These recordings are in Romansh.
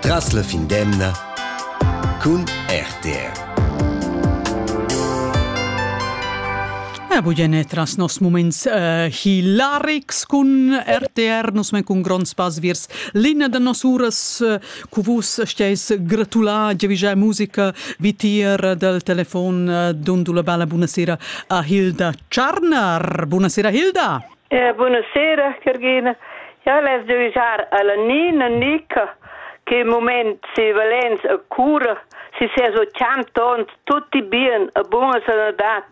Tras la fin d'emna cun RTR. Ah, bugene tras nos moments uh, hilarics cun RTR, nus men cun gronds pass viers linea da nos uras, uh, cu vus steis gratular giavigiai musica vitier del telefon uh, dundu la bella buonasera a Hilda Tscharnar. Buonasera Hilda! Eh, buonasera, Cargina. Ja les devisar alla Nina Nica che im moment si Valenz a cura, si ses 80 ons, tutti bien, a buona sanadad,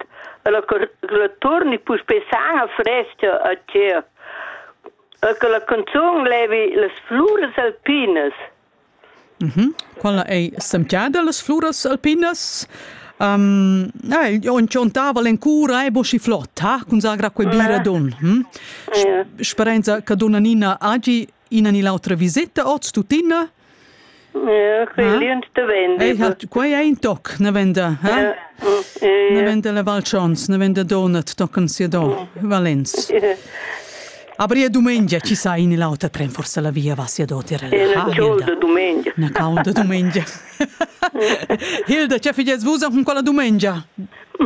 la, la torni puspè sana fresca a ciel, e che la canzun levi las fluras alpinas, Quella ei semgiada las fluras alpinas. ja, il on tschontaval encura ei boschi flot, ha, cun zagra quei bira don. Sperenza che donna Nina hagi ina ni l'autra viseta oz tuttina. Ja, quei lient de vende. Ei hat, quei ei in toc, ne venda, eh? Ne venda la Val Schons, ne venda Donat, tocan sia do, Valenz. Aber ja dumengia ci sai in l'auter tren forse la via va sia dotir. Era Hilda dumengia. Na cauda dumengia. Hilda, ce figes vus con quella dumengia?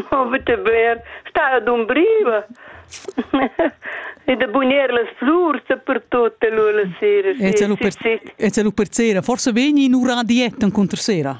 Avete ver, sta ad umbriva. E de bunir las flurs per tutte lui la sera. E ce lu per, e ce lu per sera. Forse veni in ura dieta incontro sera?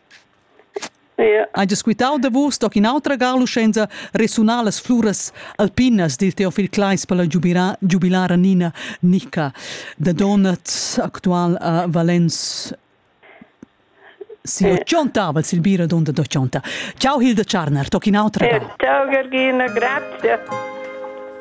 Hai disquitau davos toc in'autra galuscenza resunar las fluras alpinas dil Teofil Kleis per la giubilara Nina Nica da Donat, actual a Valens si ochontavel sil bira donda d'ochonta. Ciao Hilda Tscharner, toc in'autra. Ciao Georgina, grazie.